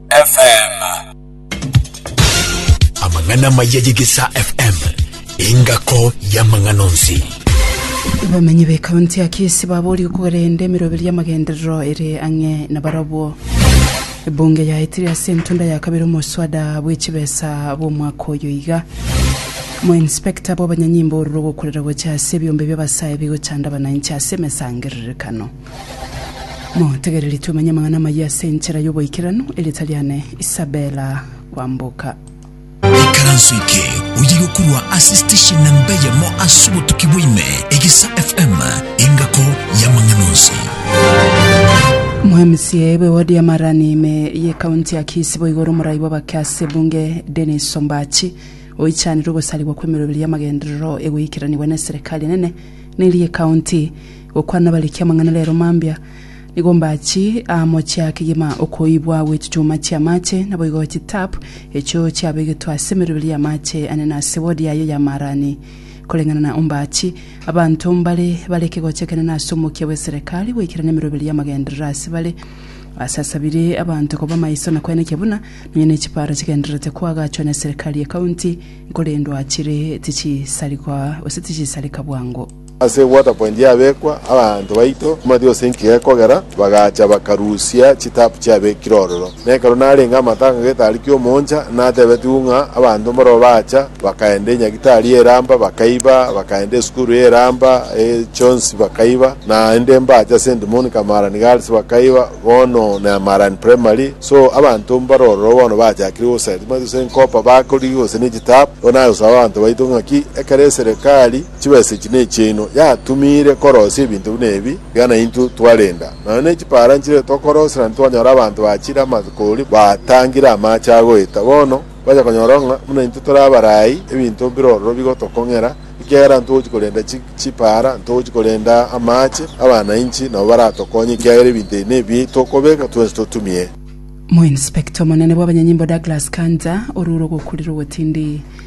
FM. Amang'ana amaya y'Egesaa FM, engako y'amang'ana onsi. Abamenyi b'ekaunti ya Kisii baboorigwe korenda emiroberi y'amagenderero ere ang'e nabarobwo. Ebunge yaetire ase entunda ya kabere omoswada bw'echibesa bw'omwaka oyo iga. Moinspector bw'abanyanyimbo ororo ogokurera gocha ase ebiombe bi'abasae bigochanda abananchi ase emesangererekano. Motegereri twamanye amang'ana amayia ase enchera y'oboikeranu, erieta riane Isabella Kwamboka. Ikaranso eke oye gokorwa ase station namba eyemo ase obotuki bwaime Egesa FM engako y'amang'ana onsi. Omwamisia bwe ward ya Marani ime ye county ya Kisii boigo ore omorai bw'abake ase ebunge Dennis Ombachi oichanire ogosarigwa kw'emeroberi y'amagenderero egoikeranigwa neserekari enene na eria ecounty Gokwana abariki amang'ana rero mambia, nigo mbachi amo chia kegima okoibwa gwe chichuma chi'amache, naboigo chitap echio chiabegetwe ase emeroberi y'amache ane na ase wodi yaye y'amaarani. Koreng'ana na ombachi, abanto mbare bare ekegocho ekenene ase omokia bw'eserekari goikerana emeroberi y'amagenderero ase bare. Basasabire abanto koba maiso na kwenekia buna nonya ne chiparo chigendererete koagachwa n'eserekari y'ekaunti, korendwa chire tichisarigwa gose tichisareka bwango. Ase Waterpoint yabekwa, abanto baito mbatia gose enkiya ekogera bagacha bakarusia chitaapu chiabekire ororo. Na ekero narenge amatanga getarikia omooncha, natebetigwe ng'a abanto mbarabwo baacha bakaenda enyagitari eramba bakaiba, bakaenda esukuru eramba e chionsi bakaiba, naende mbache ase Ndimoni Kamarani Girls bakaiba, bono Nyamarani Primary. So abanto mbare ororo bono bachakire goseti mbatia gose enkopa bakorigia gose ne chitaapu. Bono nagosaba abanto baito ng'aki ekero eserekari. Chibesa echi nechiaino. Yatumiire korosia ebinto buna ebi iga naintwe twarenda. Nonya ne chipaara nchire tokorosera ntitwanyora abanto bachire amakoori baatangire amaache agoeta. Bono kwanja konyora ng'a buna intwe tore abarai, ebinto mbire ororo bigotokong'era, ekiagera ntogochi korenda chipaara, ntogochi korenda amaache, abanainchi nabo baratokonye ekiagera ebinto ebi nebi tokobeka twensi totumie. Moinspekta omonene bw'abanyanyimbo Douglas Kanja orure ogokurera ogotindi.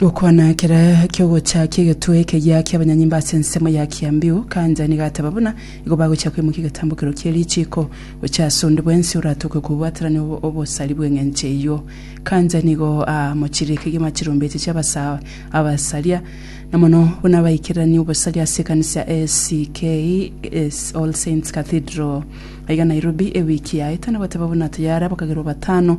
Gokwana kera kiogocha ki'egetwe ekegiya ki'abanyanyimba ase ensemo ya Kiambiu, Kanja nigo ateba buna igo bagochia koimokia egetambokero kie richiiko. Gochia ase onde bwensi oratoke kobwaterania obosari bw'eng'encho eyio. Kanja nigo aamochire kegima chirombeche chi'abasae abasaria, na mono buna abaikererania obosari ase ekanisa ya ACK, All Saints Cathedral, aiga Nairobi, ewiki yaete, na goteba buna tayare abakagerwa batano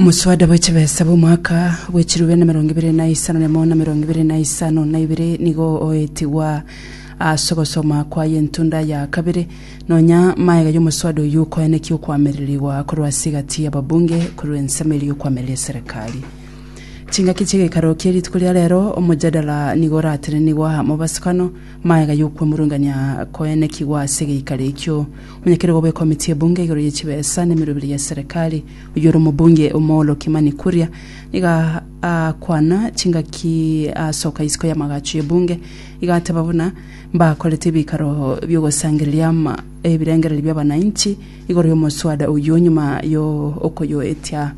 Omosuada bwe chibesa bw'omwaka bwe chirube na emerongo ebere na isano na emo na emerongo ebere na isano na ibere nigo oetigwa ase ogosoma kwaye entunda ya kabere. Nonya maega y'omosuada oyio koenekia okoamererigwa korwa ase egati y'ababunge korwa ensemeri y'okoamereria eserekari. Chingaki chi'egekaro kie rituko ria rero, omojadala nigo oratenenigwa amo basikano, Magega y'okwemurungania koenekigwa ase egeikaro ekio omonyakeregwa bw'ekomiti y'ebunge igoro ye chibesa na emeroberi ya serikali, oyio ore omobunge Omolo Kimani Kuria, nigo aakwana chingaki aasoka isiko y'amagacho y'ebunge, iga ateba buna mbakorete ebikaro bi'ogosangereria ama ebirengererio bi'abanainchi igoro y'omoswada oyio nyuma y'okoyoetia.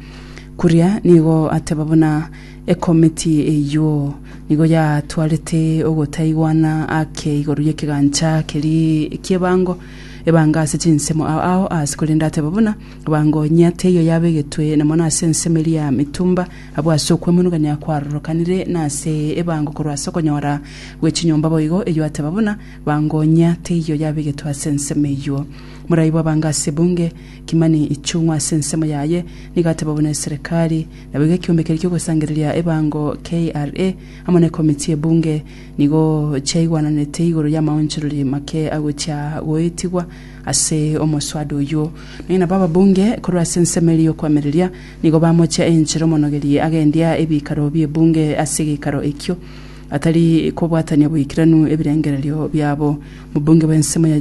Kuria nigo ateba buna Ekomiti eyio nigo yatwarete ogotaigwana ake igoro y'ekegancha keria ki'ebango, ebango ase chinsemo ao ao aase, korende ateba buna ebango enyia teiyo yabegetwe na mono ase ensemo eria ya mitumba, abwo ase okwemonogania kwarorokanire nase ebango korwa ase okonyora gwe chinyomba boigo eyio ateba buna ebango enyia teiyo yabegetwe ase ensemo eyio. Morai bw'ebango ase ebunge, Kimani Ichung'wa ase ensemo yaye nigo ateba buna eserekari Na boigo ekiombe keria ki'ogosangereria ebango KRA amo nekomiti y'ebunge nigo chiaigwananete igoro y'amaonchorori make agochia goetigwa ase omoswada oyio. Nonya nabo ababunge korwa ase ensemo eria y'okwamereria nigo bamochia enchera omonogeri agendia ebikaro bi'ebunge ase egekaro ekio atari kobwatania boikiranu ebirengererio biabo. Omobunge bw'ensemo ya.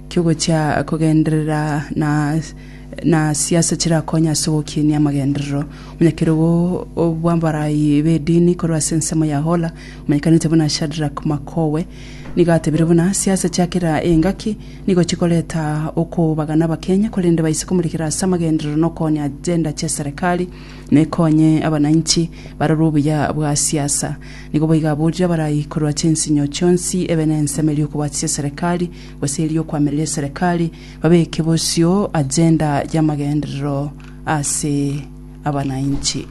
Ki'ogochia kogenderera na siasa chirakonye ase ogokinia amagenderero. Omonyakerogo bw'abarai b'edini korwa ase ensemo ya Hola, omanyekanete buna Shadrack Makowe, nigo atebire buna siasa chia kera engaki nigo chikoreta okobagana Abakenya korende baise komorekera ase amagenderero na okoonia agenda chia serikali nekonye abanainchi barore obuya bwa siasa. Nigo boigo aborire abarai korwa chinsinyo chionsi ebe nensemo eria okobwatisia serikali gose erio kwamerire eserekari, babeke bosio agenda y'amagenderero ase abanainchi.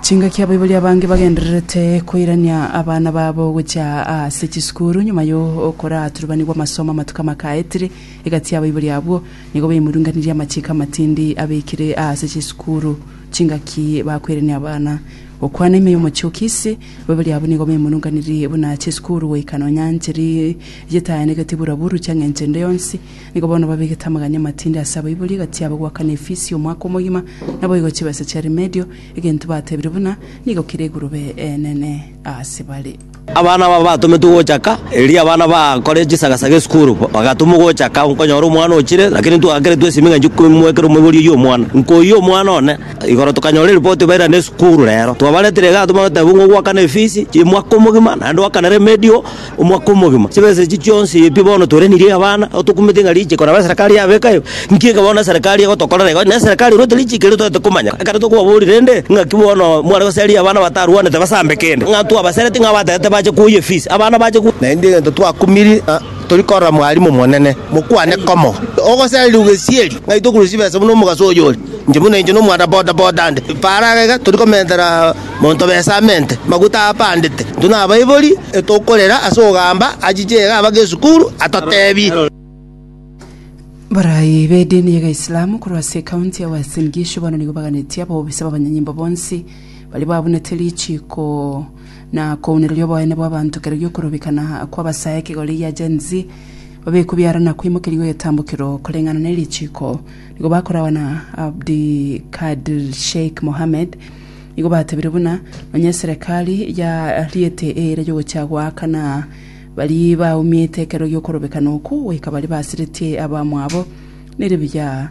Chingaki abaibori abange bagendererete koirania abana babo gochia ase chisukuru nyuma y'okoraturubanigwa amasomo amatuko amakaetire egati y'abaibori abwo, nigo baimurunganirie amachiko amatindi abekire ase chisukuru chingaki bakoirania abana. Gokwana ime y'omochie o Kisii. Babere abwo nigo bemonunganirie buna chisukuru goika nonya nchiri yetayanegetie buraburu chiang'encho ende yonsi. Nigo bono babegete amaganya amatindi ase abaibori egati yabo goaka na efisi omwaka omogima, naboigo chibesa chia rimedio, egento batebire buna nigo kere egurube enene ase bare. Abana aba batometwe gochaka, erio abana bakore chisagasaga esukuru bagatumwa gochaka, nkonyora omwana ochire, lakini ntwaakeretwe esimi ng'a nchie koimoekera omoibori oyio omwana. Nkoyia omwana one. Igoro tokanyora eripoti baira nesukuru rero. Twabaretire igaa tobagotebi ng'a ogwakana efisi y'omwaka omogima naende ogwakana remedial omwaka omogima. Chibesa echi chionsi eye pi bono torenirie abana nabo tokumete ng'a richiko nabo eserekari yabeka ime. Nki eke bono eserekari egotokorera igo? Na eserekari erwete richiko erio toete komanya. Ekero tokobaboria rende ng'aki bono mware goseria abana batarwanete basambe kende ng'a twabasereti ng'a abatagete bache koyia efisi abana bache. Naende egento twakumiri ng'a Tori korora mwarimu monene, mokwane komo. Ogosareria ogesieri, ng'ai tokure chibesa buna omogaso oyore? Inche buna inche nomwana boda boda ande, faraga iga tori komentera monto besa amente, maguta apandete, intwe nabaibori, etokorera ase ogamba achiche iga abake esukuru, atotebi. Abarai b'edini ya Gaislamu korwa ase ekaunti ya Uasin Gishu bono nigo baganetie abobisa b'abanyanyimbo bonsi baria babunete richiiko na kounereria oboene bw'abanto kera gi'okorobekana kw'abasae ekegori gia Gen Z, babekwe biara na kwaimokerigwa egetambukero koreng'ana ne richiko. Nigo bakoragwa na Abdi Kadir Sheikh Mohamed. Nigo batebire buna, Nonye eserekari yariete eira y'ogochia goakana baria baumiete ekero gi'okorobekana okwo, goika baria basiretie abamwabo, nere buya.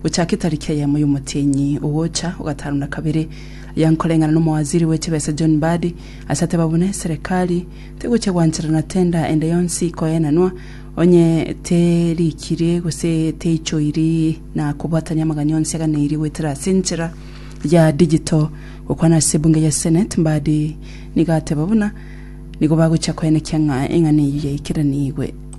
Gochake tariki eyemo y'omotienyi ogocha ogatano na kabere, yankoreng'ana n'omowaziri bwe chibesa John Mbadi, ase ateba buna eserekari tegochia gwanchera na tender ende yonsi koenanwa, onye terikirie gose teichoiri na kobwatania amagani onsi aganeirie goetera ase enchera ya digital. Gokwana ase ebunge ya Senate, Mbadi nigo ateba buna nigo bagochia koenekia ng'a eng'ana eyio yaikeranigwe.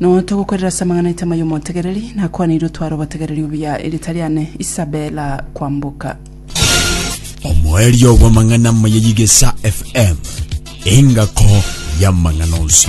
Note ogokorera ase amang'ana aito amaya omotegereri, nakwaneire otware obotegereri obuya erita riane Isabella kwamboka. Omoerio bw'amang'ana amaya y'Igesa FM, engako y'amang'ana onsi.